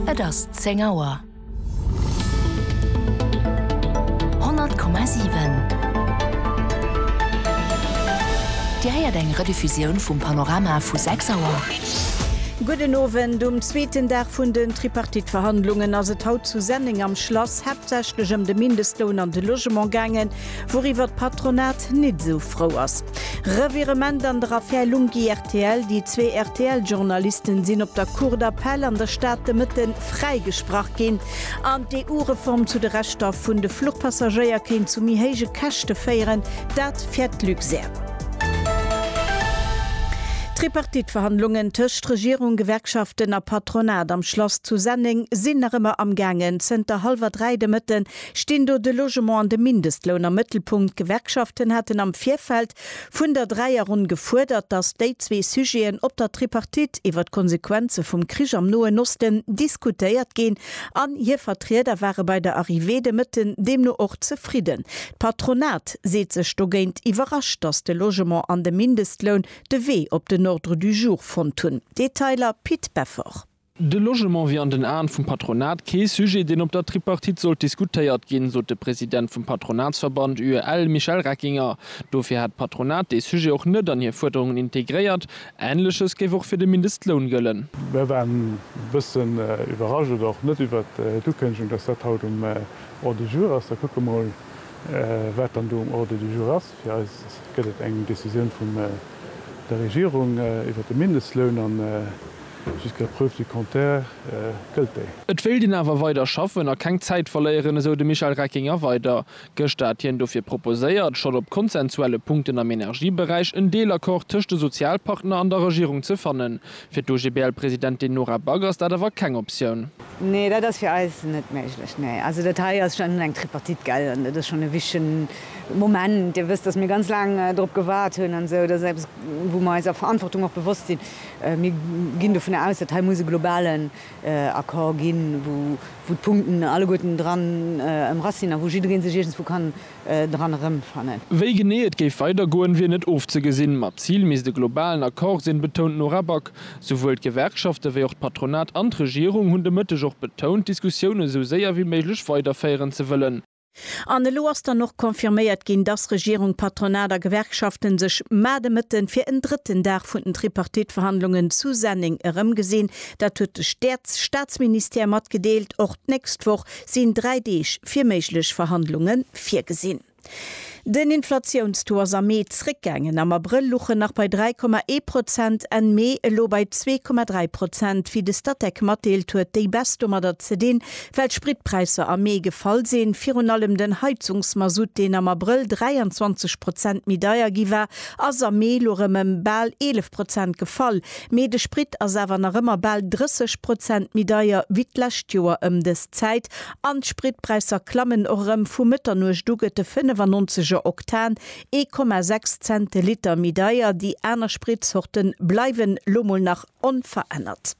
Et ass 10 Auer. 100,7 Dir héiert eng Rediffusioun vum Panorama vu 6 Auer. Gudden Owend. Um zweeten Dag vun den Tripartite-Verhandlungen ass et haut zu Senneng am Schlass haaptsächlech ëm de Mindestloun an de Logement gaangen, wouriwwer d'Patronat nit esou frou ass. Revirement an der Affär Lunghi-RTL. Rtl, Déi zwee RTL-Journalisten sinn op der Cour d'appel an der Stad de Mëtte fräigesprach ginn. An d'EU-Reform zu de Rechter vun de Fluchpassagéier kéint zu méi héije Käschte féieren, dat fäert d'Luxair. D'Tripartite-Verhandlungen tëscht Regierung, Gewerkschaften a Patronat am Schlass zu Senneng sinn nach ëmmer am gaangen. Zënter hallwer dräi de Mëtte stinn do de Logement an de Mindestloun am Mëttelpunkt. D'Gewerkschaften haten am Virfeld Vun der Dräierronn gefuerdert, datt déi zwee Sujeten op der Tripartite iwwer d'Konsequenze vum Krich am Noen Osten diskutéiert ginn an hir Vertrieder ware bei der Arrivée de Mëtten deemno och zefridden. D'Patronat seet sech dogéint iwwerrascht, datt de Logement an de Mindestloun de Wee op den Ordre du jour fonnt hunn. Detailer Pit Beffort. De Logement wier an den Aen vum Patronat kee Sujet, deen op der Tripartite sollt diskutéiert ginn, sot de President vum Patronatsverband UEL, Michel Reckinger. Dofir hätt d'Patronat dee Sujet och net an hir Fuerderungen integréiert. Änleches géif och fir de Mindestloun gëllen. Mir waren e bëssen iwwerrascht oder och net iwwer d'Ukënnegung, datt dat haut um Ordre du jour ass. Da kucke mer emol, wat dann do um Ordre du jour ass. Fir eis gëtt et eng Decisioun vun der Regierung iwwert de Mindestloun an jusqu'à preuve du contraire gëllt déi. Et wéilt een awer weider schaffen a keng Zäit verléieren, esou de Michel Reckinger weider. Gëschter hat hien dofir proposéiert, schonn op konsensuelle Punkten am Energieberäich en Deelaccord tëscht de Sozialpartner an der Regierung ze fannen, Fir d'OGBL-Presidentin Nora Back ass dat awer keng Optioun. Nee, dat ass fir eis net méiglech. Nee, also dat hei ass schonn eng Tripartite, gell, an dat ass schonn e wichtige Moment. Dir wësst, datt mir ganz laang dorop gewaart hunn an esou. Dat ass eppes, wou mer eiser Verantwortung och bewosst sinn. Mir ginn dovun aus, datt hei muss e globalen Accord ginn, wou d'Punkten alleguerten dran emrass sinn a wou jidderee sech iergendswou kann dran erëmfannen. Wéi genee et géif weidergoen, wier net ofzegesinn. Ma d'Zil misst e globalen Accord sinn, betount d'Nora Back. Souwuel d'Gewerkschafte wéi och d'Patronat an d'Regierung hunn de Mëtteg och betount, d'Diskussioune sou séier wéi méiglech weiderféieren ze wëllen. An elo ass dann och confirméiert ginn, dass Regierung, Patronat a Gewerkschaften sech mar de Mëtten fir en drëtten Dag vun den Tripartite-Verhandlungen zu Senneng erëmgesinn. Dat huet de Staatsministère matgedeelt. Och d'nächst Woch sinn dräi Deeg fir méiglech Verhandlunge virgesinn. Den Inflatiounstaux ass am Mee zréckgaangen, am Abrëll luch en nach bei 3,1 Prozent, Enn Mee elo bei 2,3 Prozent. Wéi de Statec matdeelt, huet déi Baisse domadder ze dinn, well d'Spritpräisser am Mee gefall sinn. Virun allem den Heizungsmasutt, deen am Abrëll 23 Prozent méi deier gi war, ass am Mee elo rëm ëm bal 11 Prozent gefall. Mee de Sprit ass awer nach ëmmer bal 30 Prozent méi deier wéi d'lescht Joer ëm dës Zäit an d'Spritpräisser klammen och erëm. Vu Mëtternuecht u gëtt de 95 er Oktan ee Komma sechs Cent de Liter méi deier. Déi aner Spritzorte bleiwen lo mol nach onverännert.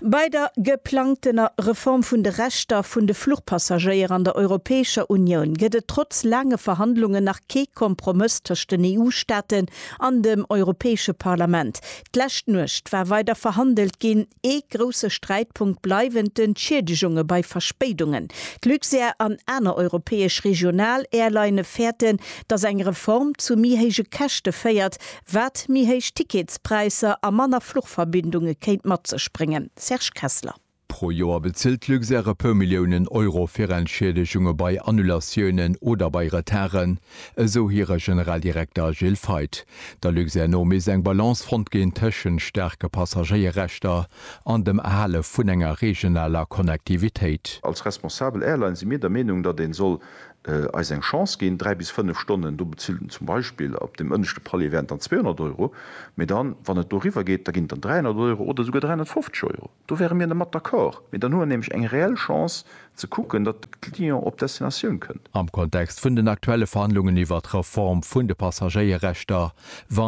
Bei der geplangtener Reform vun de Rechter vun de Fluchpassagéier an der Europäescher Unioun gëtt et trotz laange Verhandlungen nach kee Kompromëss tëscht den EU-Staaten an dem Europäesche Parlament. D'lescht Nuecht war weider verhandelt ginn. Ee grousse Sträitpunkt bleiwen d'Entschiedegunge bei Verspéidungen. D'Luxair an aner europäesch Regional-Airlinne fäerten, datt eng Reform zu méi héije Käschte féiert, wat méi héich Ticketspräisser a manner Fluchverbindunge kéint mat sech bréngen. Serge Kessler. Pro Joer bezilt d'Luxair e puer Milliounen Euro fir Entschiedegunge bei Annulatiounen oder bei Retarden, esou hire Generaldirekter Gilles Feith. Der Luxair no misst eng Balance fonnt ginn tëschent staarke Passagéierrechter an dem Erhale vun enger regionaler Connectivitéit. Als responsabel Airline si mir der Meenung, datt ee soll eis eng Chance ginn, dräi bis fënnef Stonnen, do bezilt en zum Beispill op deem ënneschte Palier wären et dann 200 Euro, mee dann, wann et doriwwer geet, da ginn et dann 300 Euro oder esouguer 350 Euro. Do wäre mir mat d'accord, mee dann hu mer nämlech eng reell Chance ze kucken, datt de Client op d'Destinatioun kënnt. Am Kontext vun den aktuelle Verhandlungen iwwert d'Reform vun de Passagéierrechter, wa.